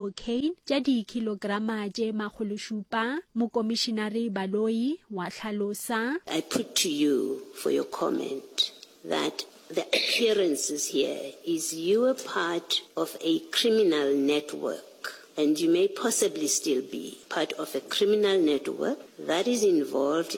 O'Kane tša dikilograma tše makgološupa, Mokomišinari Baloyi wa hlalosa. I put to you for your comment that the appearances here is you were part of a criminal network and you may possibly still be part of a criminal network that is involved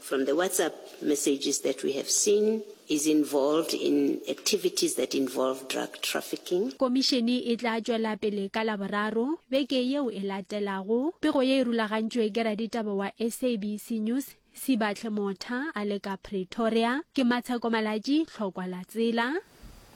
From the WhatsApp messages that we have seen, is involved in activities that involve drug trafficking. Komišene e tla tšwela pele ka Laboraro beke yeo e latelago. Pego ye e rulagantšwe ke raditaba wa SABC News, Sibahle Motha a le ka Pretoria. Ke Matsheko Malatji, Tlhokwa Latsela.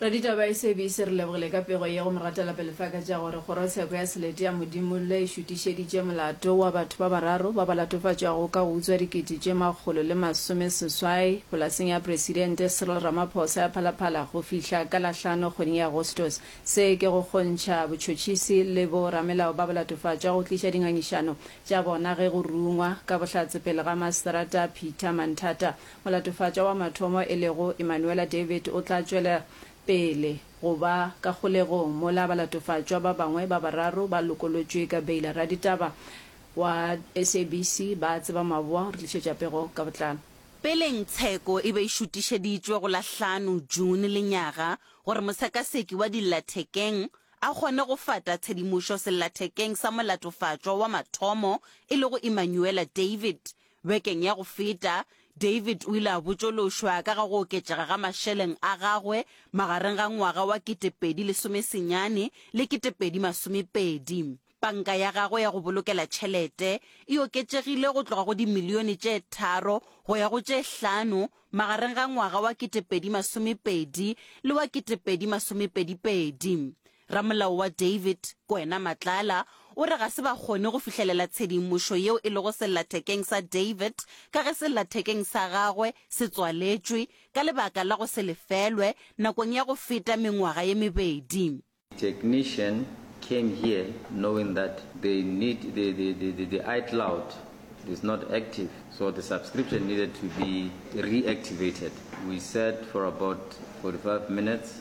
Raditabaesebise, re lebogile ka pego ye go Moratalape Lefaka tša gore Kgorotsheko ya Selete ya Modimo le šutišeditše molato wa batho ba bararo ba ba latofatšwago ka go utswa dikete tše makgolo le masome seswai polaseng ya Presidente Cyril Ramaphosa ya Phalaphala go fihla ka Lahlano kgweding ya Agostos. Se ke go kgontšha botšhotšhisi le bo ramelao ba bolatofatšwa go tliša dingangišano tša bona ge go rungwa ka bohlatse pele ga Masterata Peter Manthata Molatofatša wa mathomo e lego Emanuela David o tla tšwela pele go ba ka kgolegong mola balatofatšwa ba bangwe ba bararo ba lokolotšwe ka beila. Raditaba wa SABC ba Tseba Maboa o re tlišetša pego ka botlalo. Peleng tsheko e be e šutišeditšwe go la hlano June lenyaga gore mosekaseki wa dillathekeng a kgone go fata tshedimošo sellathekeng sa molatofatšwa wa mathomo e lego Emanuela David Bekeng ya go feta, David o ile a botšološwa ka ga go oketšega ga mašeleng a gagwe magareng ga ngwaga wa 2010 senyane le 2020. Panka ya gagwe ya go bolokela tšhelete e oketšegile go tloga go dimilione tše tharo go ya go tše hlano magareng ga ngwaga wa 2020 le wa 2022. Ramolao wa David, Kwena Matlala, o re ga se ba kgone go fihlelela tshedimošo yeo e lego sellathekeng sa David ka ge sellathekeng sa gagwe se tswaletšwe ka lebaka la go se lefelwe nakong ya go feta mengwaga ye mebedi. Technician came here knowing that they need the, the, the, the, the iCloud is not active, so the subscription needed to be reactivated. We sat for about 45 minutes.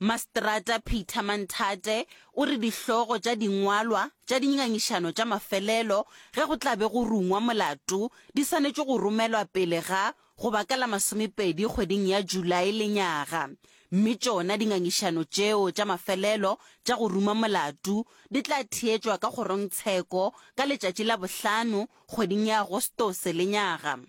Maseterata Peter Manthate o re dihlogo tša dingwalwa tša dingangišano tša mafelelo ge go tla be go rungwa molato di swanetše go romelwa pele ga go ba ka la masomepedi kgweding ya Julae lenyaga mme tšona dingangišano tšeo tša mafelelo tša go ruma molato di tla theetšwa ka kgorongtsheko ka letšatši la bohlano kgweding ya Agostose lenyaga.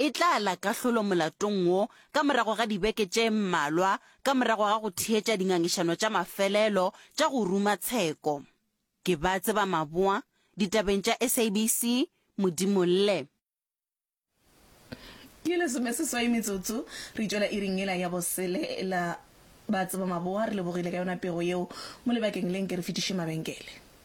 e tla la kahlolo molatong wo ka morago ga dibeke tše mmalwa ka morago ga go theetša dingangišano tša mafelelo tša go ruma tsheko. Ke ba tseba maboa ditabeng tša SABC, Modimo lle. Ke lesomeseswai metsotso re tšwela iring yela ya bosele la Ba tseba maboa. Re lebogile ka yona pego yeo mo lebakeng le nke re fetiše mabenkele.